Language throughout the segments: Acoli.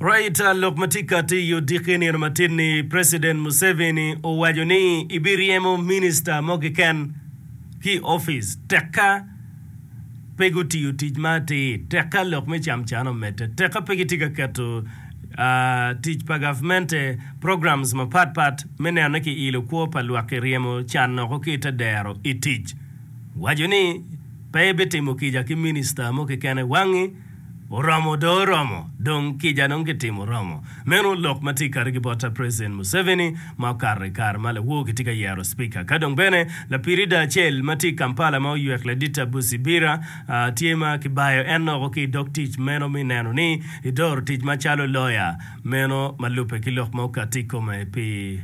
Reuters lok ma tye ka tiyo dikke nino matin-ni, President Museveni owaco ni ebiryemo minista mo keken ki i opic tekka pe gutiyo tic ma atir, tekka lok me camcan omedde, tekka pe gitye ka keto tic pa gavmente, programs mapat pat me neno ni kiilo kwo pa lwak ki ryemo can noko ki i te dero i tic. Owaco ni pe ebitimo kica ki minista mo keken i wangi. Oromo dong oromo, dong kica dong kitimo romo. Meno lok ma tye kati ki bot ta President Museveni ma okato i kare ma lawo kitye ka yero Speaker. Ka dong bene lapirida acel ma tye i Kampala ma oywek ladit Abu Sibira tye ma kibayo en loko ki i dog tic meno mi neno ni edoro tic ma calo loya meno ma lubbe ki lok ma okati i kome pi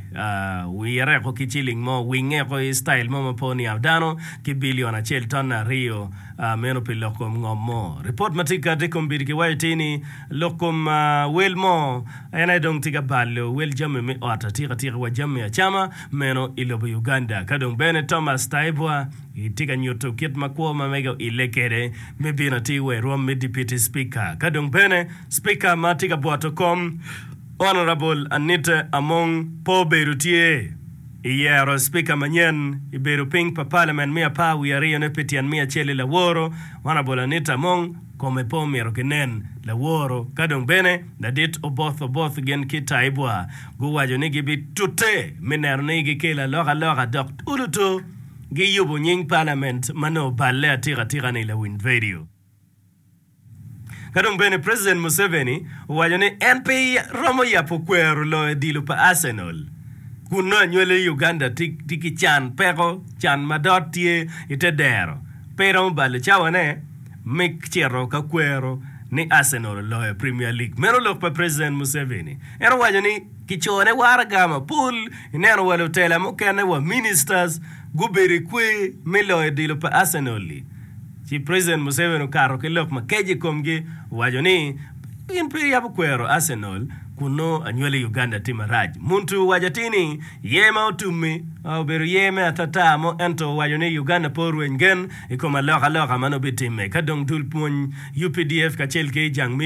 wire ko ki ciling mo, winge ko i style mo ma po niang dano ki billion acel ton aryo. meno pi lok kom ngom mo. Ripot ma tika tye kom bidi kiwaco ti ni lok kom wel mo en aye dong tye ka balo wel jami me ot atika tika wa jami acama meno i lobo Uganda. Ka dong bene Thomas Taiebwa tye ka nyuto kit ma kwo ma mege oile kede me bino atir wa i rwom me Dipiti Spika. Ka dong bene Spika ma tye ka bwoto kom Honourable Anita Among po obedo tye. I yero Cipika manyen i bedo piny pa Palamen me apar wiye aryo ne pe tyen me acel i laworo Honourable Anita Among kome pe omito ki nen. Laworo ka dong bene ladit Oboth Oboth gin ki Taibwa guwaco ni gi bi tute me neno ni gi kelo aloka loka dok uluto gi yubo nying Palament ma nongo oballe atika tika ni lawiny vedio. Ka dong bene President Museveni owaco ni en pe romo yabo kwero loyo odilo pa Arsenal kun nongo anywale i Uganda tye ki can, peko, can ma dot tye i te dero, pe iromo balo cawane me cito ka kwero ni Arsenal oloyo Premier League. Meno lok pa President Museveni. En owaco ni, Kicone waraga mapol, ineno wa lutela mukene, wa ministers, gubedo i kwe me loyo odilo pa Arsenal-li, ci President Museveni okato ki lok makeco i komgi, owaco ni, In pe iyabo kwero Arsenal kun nongo anywali i Uganda tye marac. Muntu owaco atir ni, Yer ma otum-mi obedo yer me atata mo ento owaco ni Uganda pe orweny gen i kom alokaloka ma nongo bitimme ka dong dul pwony, updf kacel ki jang me.